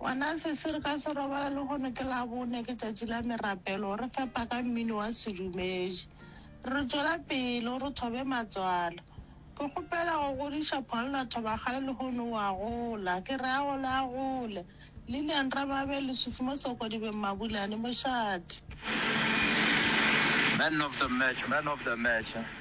Gona se se re ka se robala lehono ke Labone, ke tšatši la merapelo, re fepa ka mmino wa sedumedi. Re tšwela pele, o re thobe matswalo. Ke kgopela go godiša Pholna Thobakgale lehono o a gola. Ke re a gole a gole. Lilian Rababe, Lesufi mo Sokodibeng Mabulane, mošate. Man of the match, man of the match.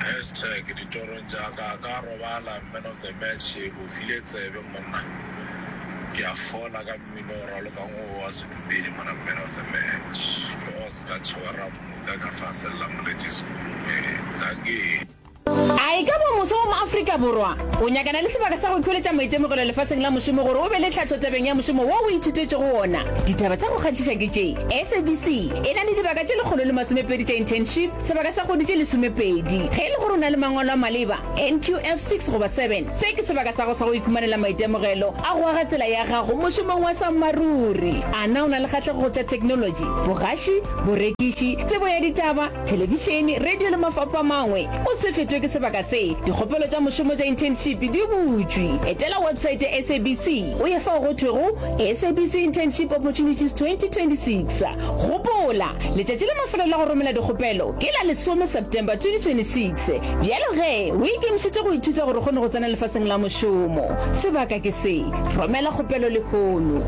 Hashtag ditorong tša ka ka robala man of the match o file tsebe monna ke a fola ka mmino o ralokang wo wa sedumedi mona man of the match ke o ska tšhewa rammuta ka fa sella moletši sekolong ee dankie. A e ka ba moswa wa mo-Afrika Borwa o nyakana le sebaka sa go ikhweletša maitemogelo lefaseng la mošomo gore o be le tlhahlo tabeng ya mošomo wo o ithutetšego wona? Ditaba tša go kgahliša ke tše, SABC e na le dibaka tše lekgolo le masomepedi tša internship, sebaka sa kgwedi tše lesomepedi. Ge e le gore o na le mangwalo a maleba, NQF six goba seven, se ke sebaka sa go sa go ikhumanela maitemogelo a go aga tsela ya gago mošomong wa sammaruri. A na o na le kgahlego go tša theknolotši, bogaši, borekiši, tsebo ya ditaba, thelebišene, radio le mafapho a mangwe. O se fetšwe ke sebaka se. Dikgopelo tša mošomo tša internship di butšwe. Etela website ya SABC o ye fao go thwego SABC Internship Opportunities 2026. Gopola, letšatši la mafelelo la go romela dikgopelo ke la lesome September 2026. Bjalo ge o ikemišetše go ithuta gore o kgone go tsena lefaseng la mošomo, sebaka ke se. Romela kgopelo lehono.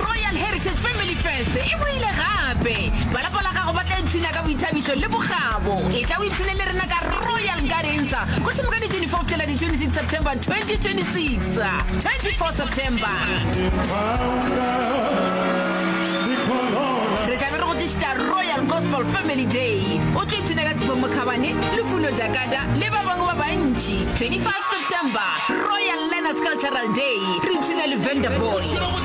Royal Heritage Family Fest e boile gape! Ba lapa la gago ba tla ipshina ka boithabišo le bokgabo. E tla o ipshine le rena ka Royal Gardens go thoma ka di 24 fihlela di 26 September 2026. 24 September re tla be re go tlišitša Royal Gospel Family Day. O tlo ipshina ka Tshifo Mokhabane, Lufuno Dakada le ba bangwe ba bantši. 25 September Royal Learners Cultural Day, re ipshina le Vendor Boy.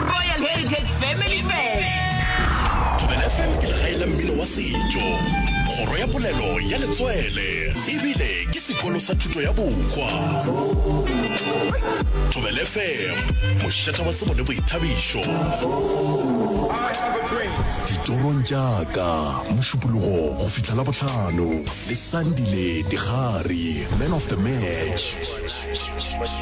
Royal Heritage Family Fest. Thobela FM ke legae la mmino wa setšo, kgoro ya polelo ya letswele ebile ke sekolo sa thuto ya bohwa. Thobela FM, mošata wa tsebo le boithabišo. Ditorong tša ka, Mošupologo go fihla la bohlano le Sandile Digari, man of the match.